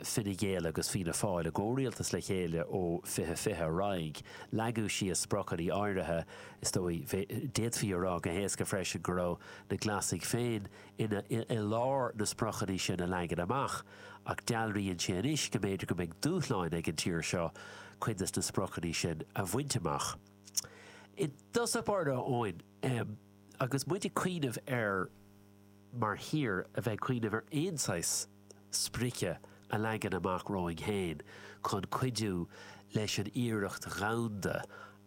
Fine Gael agus Fianna Fáil i gcomhrialtas le chéile ó 2020 ar aghaidh. Leagadh síos spriocanna áirithe, is dóigh. D'fhéadfaí a rá go héasca freisin go raibh na Glasaigh féin i lár na spriocanna sin a leagan amach. Ach dealraíonn sé anois go mb'fhéidir go mbeidh dúshláin ag an tír seo cuid de na spriocanna sin a bhaint amach. I dtosach báire, Eoin, agus muid ag cuimhneamh ar. mar thír a bheith ag cuimhneamh ar aon saghas sprice a leagan amach romhainn féin chun cuidiú leis an iarracht dhomhanda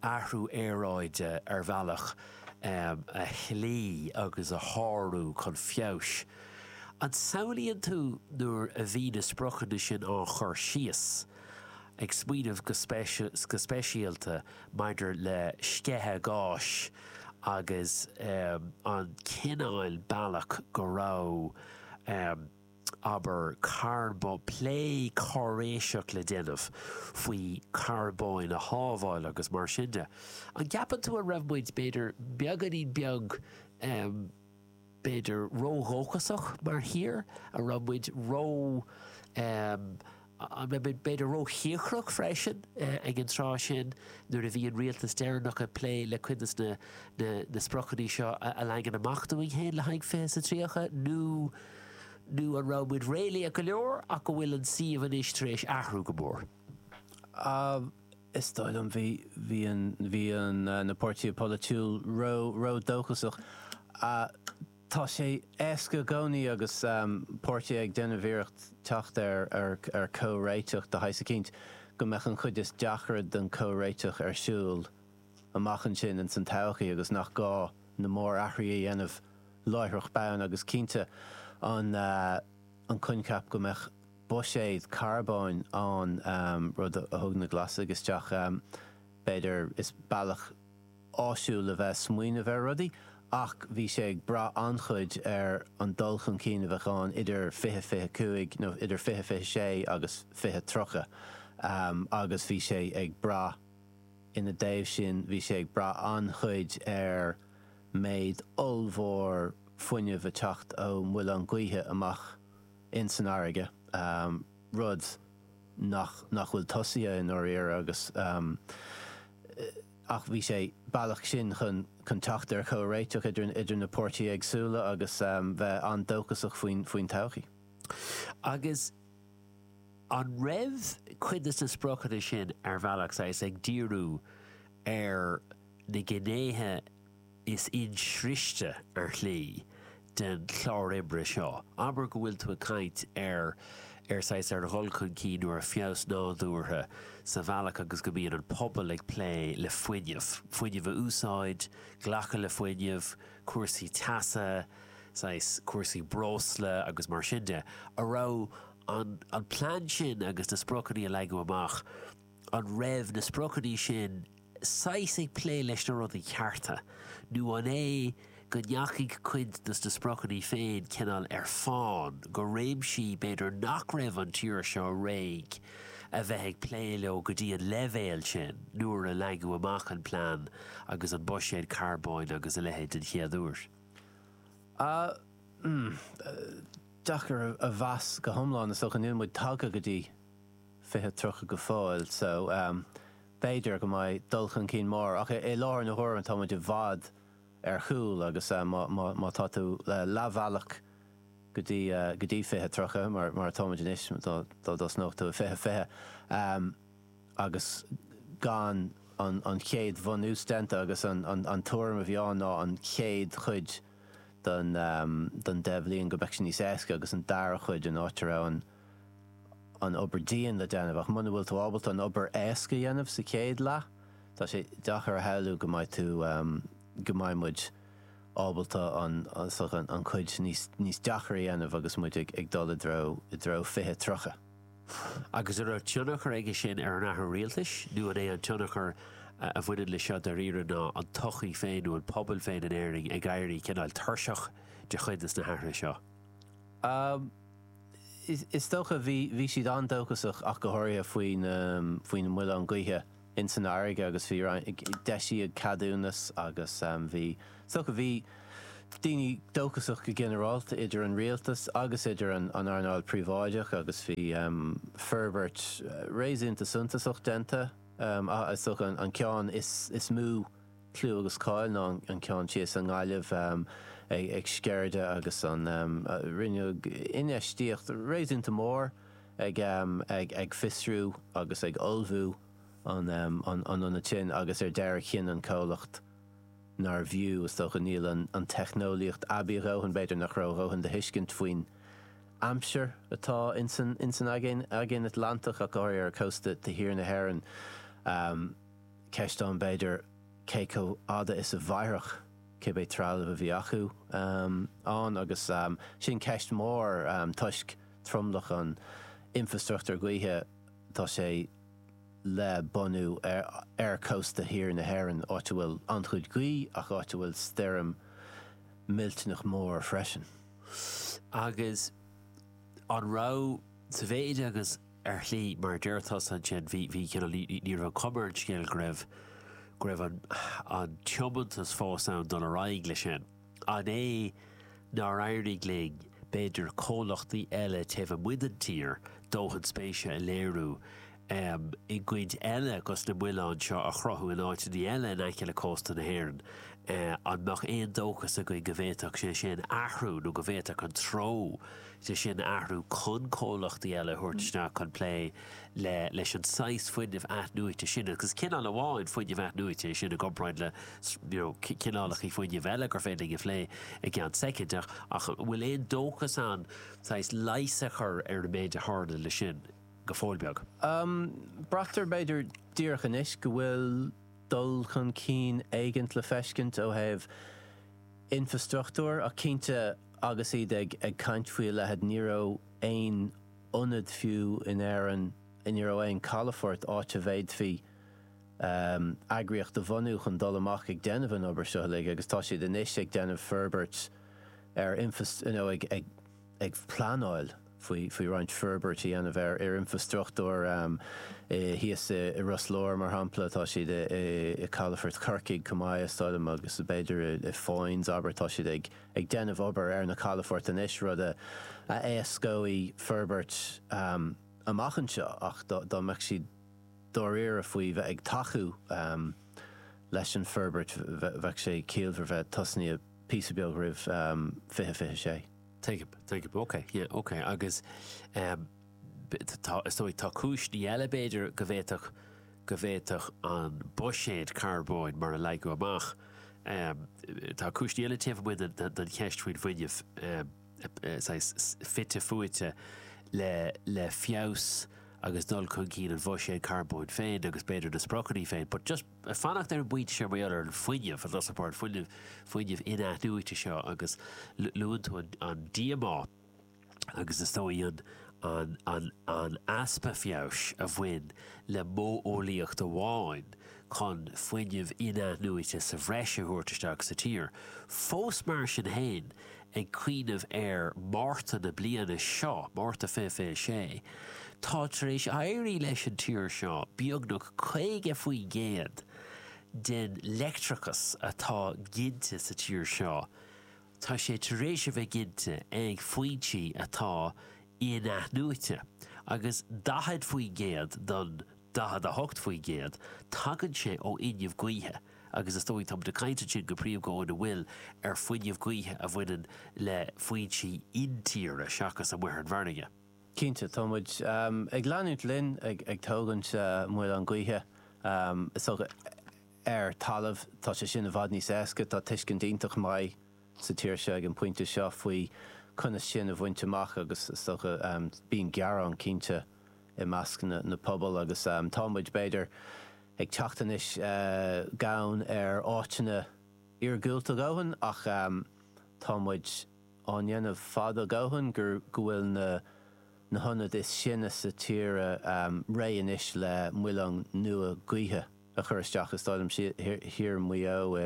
athrú aeráide ar bhealach a shlí agus a shárú chun feabhais. An samhlaíonn tú nuair a bhí na spriocanna sin á chur síos, ag smaoineamh go speisialta maidir le sceitheadh gáis agus an cineál bealach go raibh, obair, plé cáiréiseach le déanamh faoi charbóin a shábháil agus mar sin de. An gceapann tú an raibh muid, b'fhéidir, beagáinín beag. b'fhéidir, ródhóchasach mar thír, an raibh muid ró, em, an raibh muid b'fhéidir róchíocrach freisin ag an tráth sin nuair a bhí an rialtas deireanach ag plé le cuid de na, na, na spriocanna seo a leagan amach dúinn féin le haghaidh Fiche sa Tríocha nó, nó an raibh muid réalaíoch go leor ach go bhfuil an suíomh anois tar éis athrú go mór. Em. is dóigh liom, bhí, bhí an, bhí an, na páirtithe polaitiúil ró, ró dóchasach. Tá sé éasca i gcónaí agus páirtithe ag déanamh iarracht teacht ar, ar, ar comhréiteach de shaghas eicínt, go mbeadh an chuid is deacra den comhréiteach ar siúl amach ansin ins an todhchaí agus nach gá na mórathruithe a dhéanamh láithreach bonn agus cinnte, an, an coincheap go mbeadh. buiséad carbóin ann, rud a thug na Glasaigh isteach, b'fhéidir. Is bealach áisiúil a bheith ag smaoineamh ar rudaí, ach bhí sé ag brath an-chuid ar an dul chun cinn a bheadh ann idir 2025, nó idir 2026 agus 2030, agus bhí sé ag brath, ina dtaobh sin, bhí sé ag brath an-chuid ar méid ollmhór fuinnimh ag teacht ó mhuilinn ghaoithe amach. ins an fharraige, rud nach nach bhfuil tosaithe i ndáiríre agus ach bhí sé bealach sin chun chun teacht ar chomhréiteach idir na idir na páirtithe éagsúla agus bheith an-dóchasach faoin faoin todhchaí. Agus an raibh cuid de na spriocanna sin, ar bhealach, saghas ag díriú ar na gnéithe, Is inspéise ar shlí don chlár oibre seo, abair, go bhfuil tú ag caint ar, ar saghas, ar dhul chun cinn nó ar feabhas nádúrtha sa bhealach agus go mbíonn an pobal ag plé le fuinneamh, fuinneamh a úsáid, glacadh le fuinneamh, cúrsaí teasa, saghas, cúrsaí breosla agus mar sin de. An raibh an, an plean sin agus na spriocanna a leagadh amach, An raibh na spriocanna sin saghas ag plé leis na rudaí cearta, nó an é go ndeachaigh cuid dos na spriocanna féin cineál ar fán go réimsí b'fhéidir nach raibh an tír seo réidh a bheith ag plé leo go dtí an leibhéal sin nuair a leagadh amach an plean agus an buiséad carbóin agus a leithéid den chéad uair? Ah, deacair a mheas go hiomlán, is dócha. Níl muid tagtha go dtí. fiche, tríocha go fóill. So, b'fhéidir go mbeidh dul chun cinn mór, ach i láthair na huaire tá muid i bhfad ar chúl agus má tá tú leathbhealach go dtí fiche, tríocha, mar atá muid anois, dá dtosnódh tú i fiche, fiche, agus gan an chéad bhunús déanta agus an tuairim a bhí ann ná an chéad chuid den deich bhliain go mbeadh sé níos éasca agus an dara cuid, an áit a raibh an. an obair dian le déanamh ach muna bhfuil tú ábalta an obair éasca a dhéanamh sa chéad leath, tá sé deachair a shamhlú go mbeidh tú, go mbeidh muid ábalta an, an, an cuid níos, níos deachair a dhéanamh agus muid ag, ag dul i dtreo, i dtreo fiche tríocha. Agus an raibh tionchar aige sin ar an athrú rialtais nó an é an tionchar a bhaineann le seo dairíre ná an tsochaí féin nó an pobal féin in Éirinn ag éirí cineál tuirseach de chuid de na hathruithe seo? Is dócha, bhí, bhí siad an-dóchasach ach go háirithe faoin, faoin muileann gaoithe insan fharraige agus bhí roinnt, d'eisíodh ceadúnas agus bhí, is dócha, bhí daoine dóchasach go ginearálta idir an rialtas agus idir an, an earnáil phríobháideach agus bhí forbairt réasúnta suntasach déanta ach is dócha an, an ceann is, is mó. clú agus cáil ná an ceann thíos i nGaillimh ag Sceirde agus an rinneadh infheistíocht réasúnta mór ag fiosrú agus ag ullmhú an ionaid sin agus ar deireadh chinn an comhlacht nár bhfiú, is dócha, níl an teicneolaíocht aibí a dhóthain, b'fhéidir nach raibh a dhóthain de thuiscint faoin aimsir atá ins an Aigéan Atlantach ach go háirithe ar chósta thiar na hÉireann. Ceist ann, b'fhéidir, cé chomh fhada is a mhairfeadh cibé trealamh a bhí acu ann agus sin ceist mhór toisc tromlach an infreastruchtúir gaoithe tá sé le bunú ar chósta thiar na hÉireann, áit a bhfuil an-chuid gaoithe ach áit a bhfuil stoirm millteanach mór freisin. Agus an raibh, sa mhéid agus. Ar shlí, mar a deir tusa ansin, bhí, bhí, you know, ní raibh an chuma ar an scéal go raibh, go raibh an, an tiomantas fós ann dul ar aghaidh leis sin. An é nár éirigh linn, b'fhéidir, comhlachtaí eile taobh amuigh den tír dóthain spéise a léiriú ehm i gcuid eile gus na muileáin seo a chruthú in áiteannaí eile in aice le cósta na hÉireann eh an mbeadh aon dóchas againn go bhféadfadh sé sin athrú nó go bhféadfadh an treo sin athrú chun comhlachtaí eile a thabhairt isteach chun plé le leis an saghas fuinnimh athnuaite sin. Agus cineál amháin fuinnimh athnuaite é sin i gcomparáid le you know cineálachaí fuinnimh eile gur féidir linn a phlé i gceann soicind. Ach ach an bhfuil aon dóchas ann saghas leigheas a chur ar an méid a tharla leis sin? Go fóill beag. Braitear b'fhéidir díreach anois go bhfuil dul chun cinn éigint le feiscint ó thaobh, infreastruchtúir, ach cinnte agus iad ag caint faoi a leithid ní raibh aon ionad fiú in Éirinn, ní raibh aon calafort áit a bhféadfaí eagraíocht a bhunú chun dul amach ag déanamh an obair seo uilig agus tá siad anois ag déanamh forbairt ar infreastruchtúr, you know, ag. ag pleanáil faoi roinnt forbairt a dhéanamh ar infreastruchtúr thíos i Ros Láir, mar shampla. Tá siad i calafort Chorcaigh chomh maith, is dóigh liom, agus b'fhéidir i Foynes, abair. Tá siad ag déanamh obair ar na calafoirt anois, rud a éascóidh forbairt amach anseo. Ach dá mbeadh siad dáiríre faoi bheith ag tacú leis an bhforbairt, bheadh sé ciallmhar bheith tosnaithe píosa beag roimh 2026. Tuigim, tuigim, ok, yeah, ok, agus tá, is dóigh, tá cúiseanna eile b'fhéidir go bhféadfadh, go bhféadfadh an buiséad carbóin, mar a leagadh amach, tá cúiseanna eile taobh amuigh den, den cheist faoin bhfuinneamh, saghas fite fuaite le, le feabhas agus dul chun cinn an bhuiséid carbóin féin agus b'fhéidir na spriocanna féin, but just, Ag fanacht ar an bpointe seo mar gheall ar an fuinneamh, an, fuinneamh, fuinneamh in-athnuaite seo agus luann tú an, an díomá agus is dóigh an, an, an, an easpa feabhais a bhain le modheolaíocht amháin chun fuinneamh in-athnuaite sa bhreis a thabhairt isteach sa tír. Fós mar sin féin, Ag cuimhneamh ar Mhárta na bliana seo, Márta 2026, tá tar éis éirí leis an tír seo beagnach 50% den leictreachas atá ginte sa tír seo, tá sé tar éis a bheith ginte ag foinsí atá inathnuaite, agus 40% don 48%, tagann sé ó fhuinneamh gaoithe agus is dócha, tá muid ag caint ansin go príomha go bhfuil, ar fuinneamh gaoithe a bhaineann le foinsí intíre seachas amuigh ar an bhfarraige. Cinnte, tá muid ag leanúint linn ag tógaint muileann gaoithe. Is dócha, ar talamh, tá sé sin i bhfad níos éasca. Tá tuiscint iontach maith sa tír seo ag an bpointe seo faoi conas sin a bhaint amach agus is dócha, bíonn gearán, cinnte, i measc na pobal agus tá muid, b'fhéidir, ag teacht anois gann ar áiteanna iargúlta a dhóthain ach tá muid á ndéanamh fad a dhóthain go bhfuil na hionad is sine sa tír réidh anois le muileann nua gaoithe a chur isteach istigh i dtuaisceart Mhaigh Eo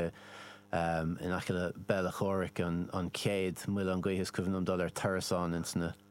in aice le Béal Átha Chomhraic, an chéad mhuileann gaoithe is cuimhin liom dul ar turas ann, ins na.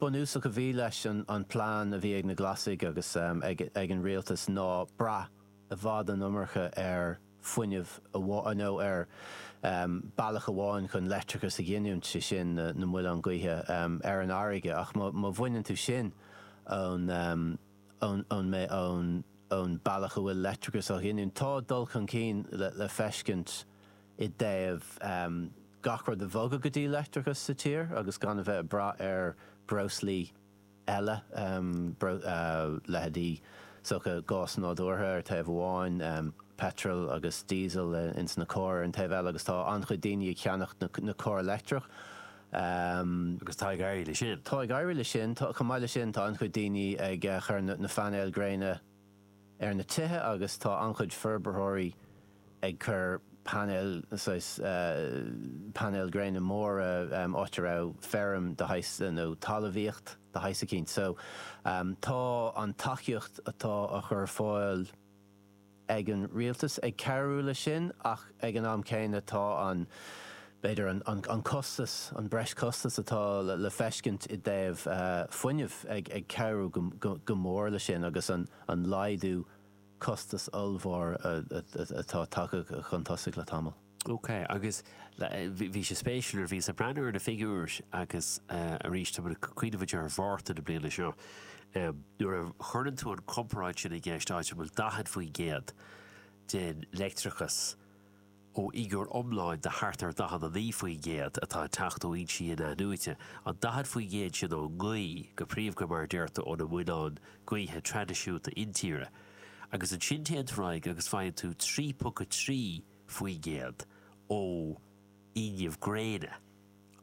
bunúsach a bhí leis an plean a bhí ag na Glasaigh agus ag an rialtas ná brath i bhfad an iomarca ar fuinneamh amháin, nó ar bealach amháin chun leictreachas a ghiniúint, sé sin, na muileann gaoithe ar an fharraige. Ach má bhaineann tú sin ón mbealach a bhfuil leictreachas á ghiniúint, tá dul chun cinn le feiscint. i dtaobh gach rud a bhogadh go dtí leictreachas sa tír agus gan a bheith ag brath ar bhreoslaí eile, leithéidí is dócha gás nádúrtha ar thaobh amháin, peitreal agus díosal ins na cairr ar an taobh eile agus tá an-chuid daoine ag ceannacht na carr leictreach. Tá ag éirí leis sin. Chomh maith leis sin tá an-chuid daoine ag chur na painéil gréine, ar na tithe agus tá an-chuid forbarthóirí ag cur painéil, saghas painéil gréine móra, áit a raibh feirm de shaghas nó talamhaíocht de shaghas eicínt. So tá an tacaíocht atá á chur ar fáil ag an rialtas ag cabhrú leis sin ach ag an am céanna tá an, b'fhéidir, an costas, an breis-chostas atá le feiscint i dtaobh fuinnimh ag cabhrú go mór leis sin agus an laghdú costas ollmhór atá tagtha chun tosach le tamall. Ok, agus bhí sé spéisiúil nuair a bhíos ag breathnú ar na figiúir agus arís, tá mé ag cuimhneamh ag deireadh Márta na bliana seo nuair a chuireann tú an chomparáid sin i gceist, áit a bhfuil 40% den leictreachas, ó fhigiúr iomláin de thart ar 49% atá ag teacht ó fhoinsí in-athnuaite, an 40% sin ón ngaoth, go príomha mar a deirtear, ó na muileáin gaoithe traidisiúnta intíre. Agus ansin téann tú ar aghaidh agus faigheann tú 3.3% ó fhuinneamh gréine.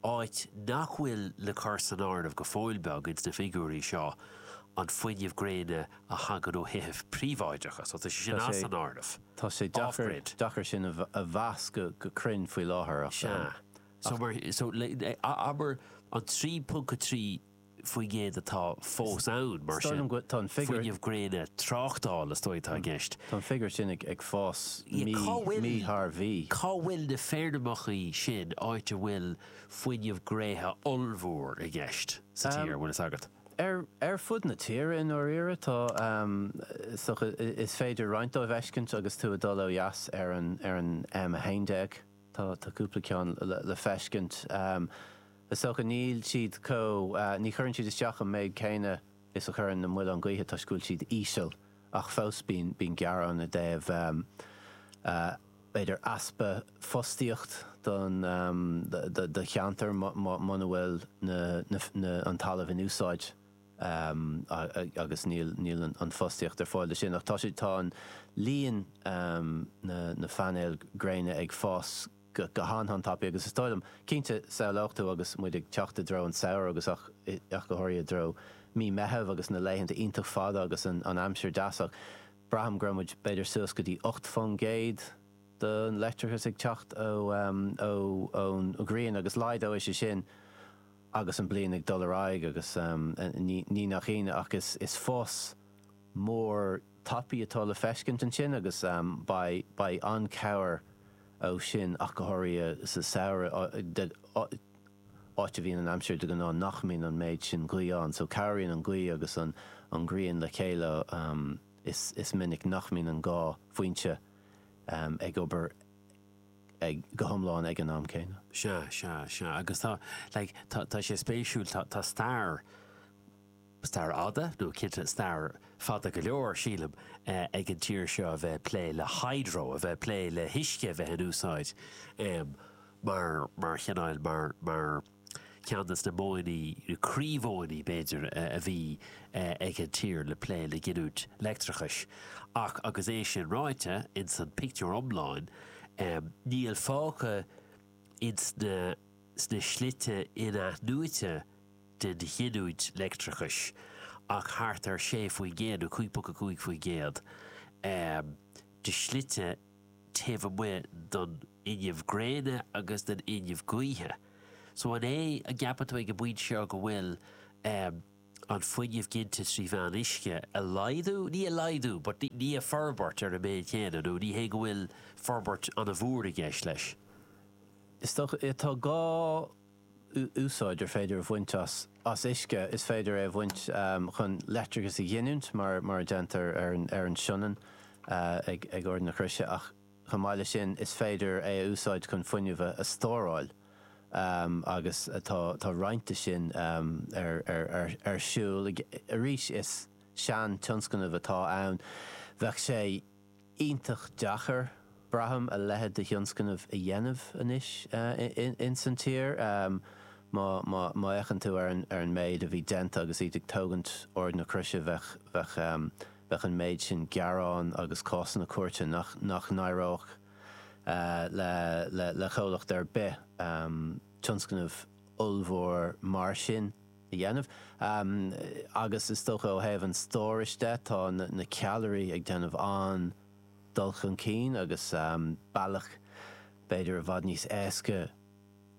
áit nach bhfuil le cur san áireamh go fóill beag ins na figiúirí seo an fuinneamh gréine a thagann ó thithe príobháideacha, so tá sé sin as an áireamh. Tá sé deacair, deacair sin a mheas go, go cruinn faoi láthair ach, ach. Sea. So mar, so le, abair an 3.3 faoin gcéad atá fós ann, mar sin. Fuinneamh gréine tráchtála, is dóigh, atá i gceist. Tá an figiúr sin ag fás mí thar mhí. Cá bhfuil na feirmeacha sin, áit a bhfuil fuinneamh gréine ollmhór i gceist sa tír, an bhfuil fhios agat? Ar fud na tíre, i ndáiríre. Is féidir roinnt díobh a fheiscint agus tú ag dul ó dheas ar an M11. Tá cúpla ceann le feiscint. Is dócha, níl siad chomh, ní chuireann siad isteach an méid céanna is a chuireann na muileáin gaoithe toisc go bhfuil siad íseal ach fós bíonn gearán i dtaobh b'fhéidir easpa fostaíocht don, do cheantar muna bhfuil na, an talamh in úsáid agus níl an fostaíocht ar fáil do sin. Ach tá sé, tá an líon na, na phainéil gréine ag fás go. go han-tapaidh agus is dóigh liom, cinnte, samhlódh tú agus muid ag teacht i dtreo an tsamhraidh agus ach go háirithe i dtreo mí Meitheamh agus na laethanta iontach fada agus an aimsir deas ach braithim go raibh muid b'fhéidir suas go dtí ocht fán gcéad don leictreachas ag teacht ón ghrian agus laghdóidh sé sin agus an bliain ag dul ar aghaidh agus ní nach ionadh ach is fás mór tapaidh atá le feiscint ansin agus beidh an-cabhair ó sin ach go háirithe sa samhradh áit a bhíonn an aimsir de ghnáth nach mbíonn an méid sin gaoth ann so cabhraíonn an gaoth agus an ghrian le chéile is minic nach mbíonn an dhá foinse ag obair go hiomlán ag an am céanna. Sea, sea, sea. Agus tá like tá sé spéisiúil tá stair, Stair fhada, nó cinnte stair fada go leor, sílim, ag an tír seo a bheith ag plé le hydro, a bheith ag plé le huisce a bheith in úsáid mar chineál, mar cheann de na modhanna, croímhodhanna, b'fhéidir, a bhí ag an tír le plé le giniúint leictreachais. Ach agus é sin ráite, ins an pictiúr iomlán, níl fágtha ins na slite in-athnuaite, den ghiniúint leictreachais ach thart ar 6 faoin gcéad, nó 5 ponc a 5 faoin gcéad, de shlite taobh amuigh den fhuinneamh gréine agus den fhuinneamh gaoithe. So an é, an gceapann tú ag an bpointe seo, go bhfuil an fuinneamh ginte trí mheán uisce a laghdú, ní a laghdú but ní a forbairt ar an méid chéanna nó ní hé go bhfuil forbairt an-mhór i gceist leis? Is dócha é, tá gá. úsáid ar féidir a bhaint as uisce, is féidir é a bhaint chun leictreachas a ghiniúint, mar a déantar ar an Sionainn ag Ard na Croise, ach chomh maith leis sin, is féidir é a úsáid chun fuinneamh a stóráil agus tá roinnt de sin ar siúl. Arís, is sean-tionscnamh atá ann. Bheadh sé. iontach deacair, braithim, a leithéid de thionscnamh a dhéanamh anois ins an tír. Má fhéachann tú ar an méid a bhí déanta agus iad ag tógaint Ard na Croise bheadh an méid sin gearán agus cásanna cúirte nach n-éireodh le comhlacht ar bith tionscnamh ollmhór mar sin. a dhéanamh. Agus is dócha ó thaobh an stórais de, tá na ceallraí ag déanamh an-dul chun cinn agus bealach b'fhéidir i bhfad níos éasca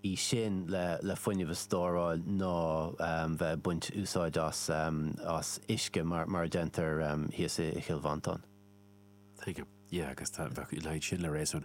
í sin le fuinneamh a stóráil ná bheith ag baint úsáid as uisce mar a déantar thíos i gCill Mhantáin. Tuigim. Yeah, agus bheadh a leithéid sin le réasún.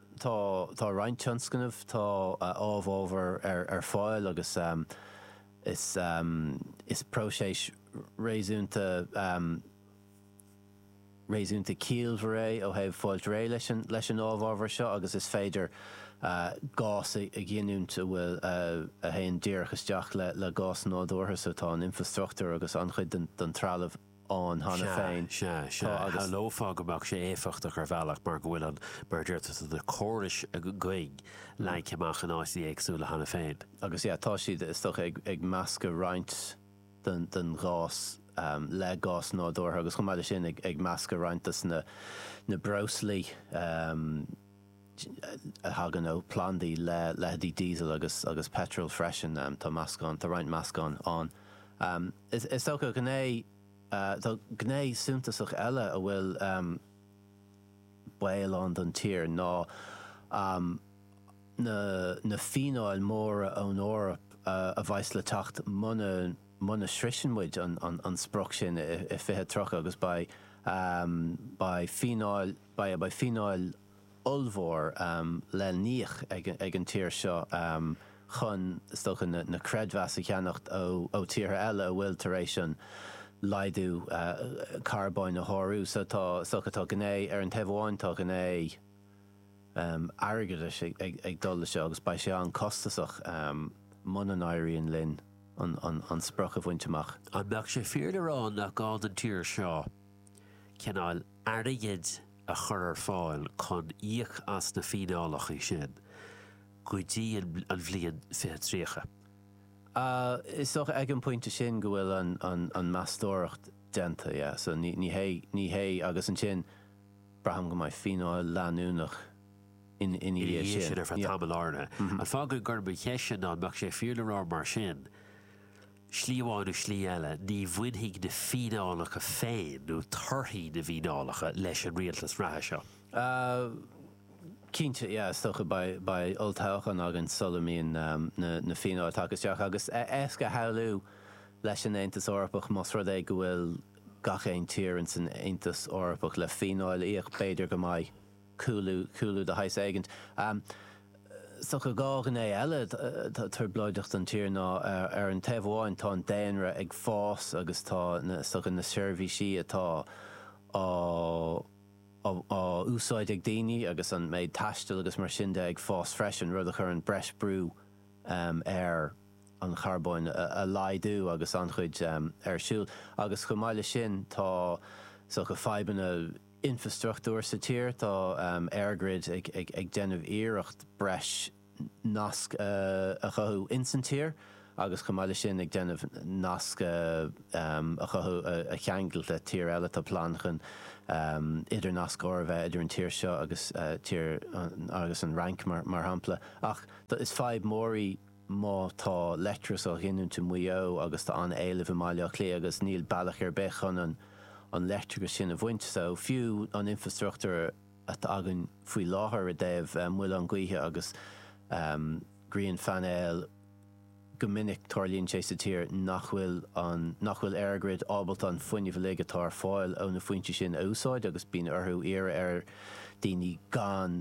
Tá tá roinnt tionscnamh tá amhábhar ar ar fáil agus is is próiseas réasúnta réasúnta ciallmhar é ó thaobh fáilt réidh leis an leis an amhábhar seo agus is féidir gás a ghiniúint a bhfuil a théann díreach isteach le le gás nádúrtha so tá an infreastruchtúr agus an-chuid den den trealamh ann cheana Sea, féin. sea, sea. Tá agus. Shamhlófá go mbeadh sé éifeachtach ar bhealach mar go bhfuil an mar a dúirt tusa na córais againn leagtha amach in áiteanna éagsúla cheana féin. Agus, yeah, tá siad, is dócha, ag meascadh roinnt den ghás le gás nádúrtha agus, chomh maith leis sin, ag meascadh roinnt de na breoslaí. thagann ó phlandaí le leithéidí Diesel agus agus Petrol freisin. Tá meascán, tá roinnt meascán ann. Is is dócha gné, tá gné suntasach eile a bhfuil baol ann don tír ná na na fíneáil mhóra ón Eoraip a bheas le teacht muna muna shroiseann muid an an an sprioc sin i 2030 agus beidh beidh fíneáil Beidh fíneáil ollmhór le híoc ag an tír seo chun, is dócha, na creidmheasa a cheannacht ó tíortha eile atá tar éis an laghdú carbóin a shárú. So tá, is dócha, tá gné, ar an taobh amháin, tá gné airgeadais ag dul leis seo agus beidh sé an-costasach muna n-éiríonn linn an sprioc a bhaint amach. An mbeadh sé fíor le rá nach gá don tír seo, cineál airgid a chur ar fáil chun íoc as na fíneálacha sin go dtí an bhliain fiche tríocha. Is dócha ag an bpointe sin go bhfuil an meastóireacht déanta, yeah, so ní hé, ní hé, agus ansin braithim go mbeidh fíneáil leanúnach ina dhiaidh sin. Ina dhiaidh sin ar feadh tamaill áirithe. An fáth go gcuirim an cheist sin ná an mbeadh sé fíor le rá mar sin, Slí amháin nó slí eile, ní bhainfidh na fíneálacha féin, nó torthaí na bhfíneálacha, leis an rialtas reatha seo. Cinnte, yeah, is dócha, beidh olltoghchán againn sula mbíonn na fíneálacha tagtha isteach. Agus éasca a shamhlú leis an Aontas Eorpach, más rud é go bhfuil gach aon tír in san Aontas Eorpach le fíneáil a íoc, b'fhéidir go mbeidh. cúlú, cúlú de shaghas éigint. Is dócha dhá ghné eile atá trioblóideach don tír ná, ar an taobh amháin, tá an daonra ag fás agus tá, is dócha, na seirbhísí atá á úsáid ag daoine agus an méid taistil agus mar sin de ag fás freisin, rud a chuireann breis brú ar an charbóin a laghdú agus an-chuid ar siúl. Agus chomh maith leis sin, tá, is dócha, fadhbanna. infreastruchtúr sa tír. Tá EirGrid ag déanamh iarracht breis nasc a chothú ins an tír agus chomh maith le sin ag déanamh nasc a chothú a cheangailt le tír eile. Tá plean chun idirnascóir a bheith idir an tír seo agus an Fhrainc mar shampla. Ach is fadhb mór í. má tá leictreachas á ghiniúint i Maigh Eo agus tá an éileamh i mBaile Átha Cliath agus níl bealach ar bith chun an leictreachas sin a bhaint, so fiú an infreastruchtúr atá againn faoi láthair i dtaobh muileáin gaoithe agus grianphainéil, go minic tarlaíonn sé sa tír nach bhfuil an, nach bhfuil EirGrid ábalta an fuinneamh uilig atá ar fáil ó na foinsí sin a úsáid agus bíonn orthu iarraidh ar dhaoine gan,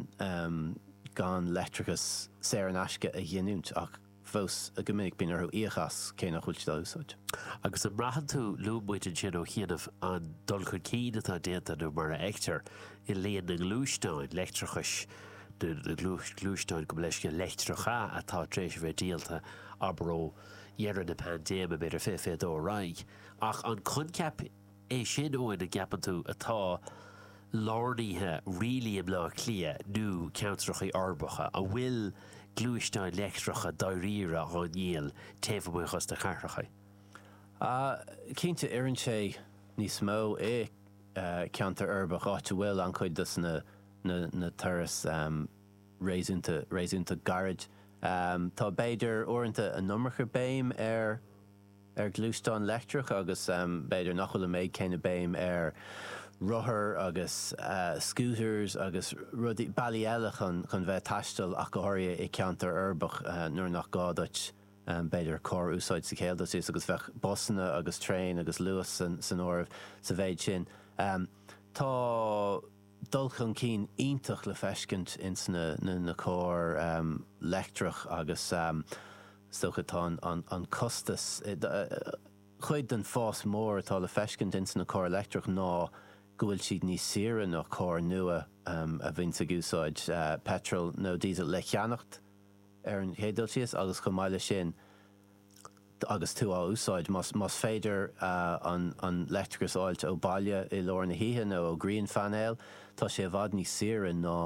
gan leictreachas saor in aisce a ghiniúint, ach fós go minic bíonn orthu íoc as, cé nach bhfuil siad á úsáid. Agus an mbraitheann tú, luaigh muid ansin ó chianaibh, an dul chun cinn atá déanta, nó mar a fheictear, i líon na ngluaisteáin leictreachais, nó na gluaisteáin, gabh mo leithscéal, leictreacha atá tar éis a bheith díolta, abair ó dheireadh na paindéime, b'fhéidir, fiche, fiche a dó ar aghaidh. Ach an coincheap. É sin Eoin an gceapann tú atá lárnaithe really i mBleá Cliath nó ceantracha uirbeacha a bhfuil gluaisteáin leictreacha dáiríre á ndíol taobh amuigh des na cathracha? Ah, cinnte, oireann sé níos mó i ceantar uirbeach, áit a bhfuil an-chuid dos na turais réasúnta, réasúnta gairid. Tá, b'fhéidir, uaireanta an iomarca béim air. ar ghluaisteáin leictreacha agus b'fhéidir nach bhfuil an méid céanna béim ar rothair agus scooters agus rudaí, bealaí eile chun chun bheith ag taisteal ach go háirithe i ceantar uirbeach nuair nach gá duit b'fhéidir carr a úsáid sa chéad dul síos agus bheadh busanna agus traein agus Luas san áireamh sa mhéid sin. Tá. dul chun cinn iontach le feiscint ins na cairr leictreach agus is dócha tá an costas, chuid den fás mór atá le feiscint ins na cairr leictreach ná go bhfuil siad níos saoire ná cairr nua a bhíonns ag úsáid peitreal nó diesel, le cheannacht ar an chéad dul síos agus chomh maith leis sin, agus tú á úsáid, más féidir an leictreachas a fháilt ó bhaile i lár na hoíche nó ó ghrianphainéal, tá sé i bhfad níos saoire ná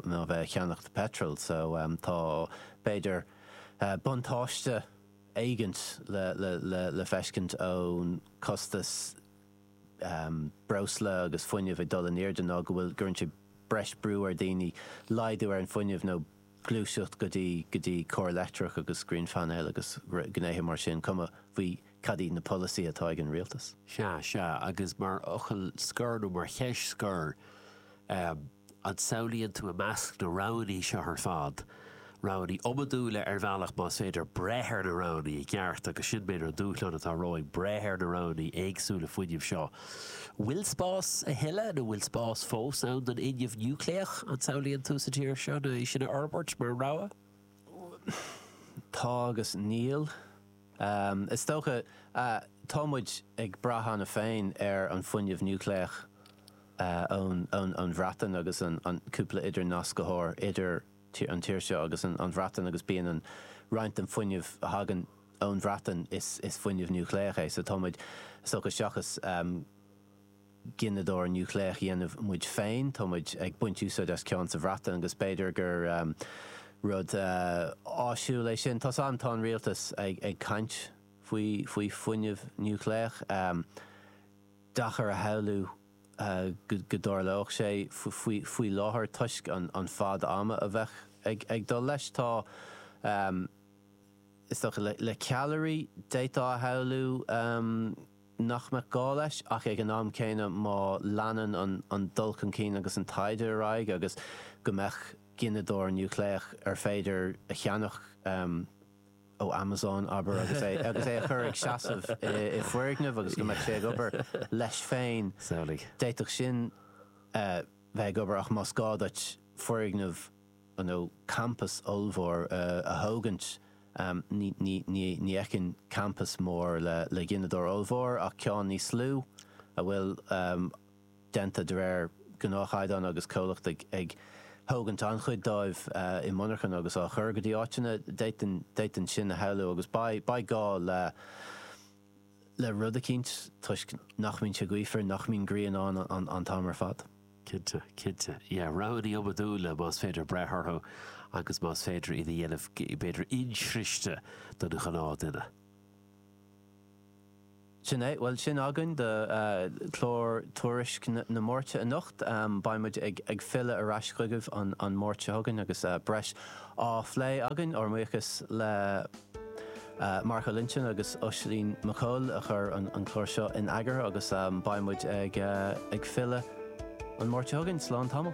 a bheith ag ceannacht peitril. So, tá, b'fhéidir, buntáiste éigint le feiscint ón costas breosla agus fuinnimh ag dul in airde ná go bhfuil, gcuireann sé breis brú ar daoine laghdú ar an fuinneamh nó, gluaiseacht go dtí go dtí cairr leictreach agus grianphainéil agus gnéithe mar sin, cuma faoi cad iad na polasaí atá ag an rialtas. Sea, sea, agus mar fhocal scoir nó mar cheist scoir, an samhlaíonn tú i measc na roghanna seo ar fad, roghanna iomadúla ar bhealach, más féidir breith ar na roghanna i gceart agus sin b'fhéidir an dúshlán atá romhainn, breith ar na roghanna éagsúla fuinnimh seo, Bhfuil spás a thuilleadh, nó bhfuil spás fós ann don fhuinneamh núicléach, an samhlaíonn tú, sa tír seo, nó é sin a fhorbairt mar rogha? Tá agus níl. Is dócha, tá muid ag brath cheana féin ar an fuinneamh núicléach ón Bhreatain agus an cúpla idirnascthóir idir an tír seo agus an Bhreatain agus bíonn an roinnt den fuinneamh a thagann ón Bhreatain is fuinneamh núicléach é. So tá muid is dócha seachas gineadóir núicléach dhéanamh muid féin, tá muid ag baint úsáid as ceann sa Bhreatain agus b'fhéidir gur rud áisiúil é sin. Tá an tá an rialtas ag ag caint faoi faoi fuinneamh núicléach. Deacair a shamhlú. go dtarlódh sé faoi láthair toisc an fad ama a bheadh ag dul leis. Tá, is dócha, le ceallairí, d'fhéadfá a shamhlú nach mbeadh gá leis, ach ag an am céanna, má leanann an dul chun cinn agus an taighde ar aghaidh agus go mbeadh gineadóir núicléach ar féidir a cheannach, ó Amazon, abair, agus é agus é a chur ag seasamh i i foirgneamh agus go mbeadh sé ag obair leis féin. Samhlaigh. D'fhéadfadh sin eh bheith ag obair ach más gá duit foirgneamh you know campas ollmhór eh a thógaint em ní ní ní ní fheicfinn campas mór le le gineadóir ollmhór ach ceann níos lú a bhfuil em déanta de réir gnáthchaighdeán agus comhlacht ag thógaint an-chuid dóibh i monarchan agus á chur go dtí áiteanna, d'fhéadfainn sin a shamhlú agus beidh gá le rud eicínt toisc nach mbíonn sé gaofar, nach mbíonn grian ann an t-am ar fad. Cinnte, cinnte. Yeah, roghanna iomadúla más féidir brath orthu agus más féidir iad a dhéanamh b'fhéidir insroichte don ghnáthduine. Sin é. Bhuel, sin againn do chlár Tuairisc na Máirte anocht. Beidh muid ag filleadh ar ais chugaibh an Máirt seo chugainn agus breis á phlé againn. Ár mbuíochas le Mark Ó Loinsigh agus Oisín Mac Cóil a chuir an clár seo in eagar agus beidh muid ag filleadh an Máirt seo chugainn. Slán tamall.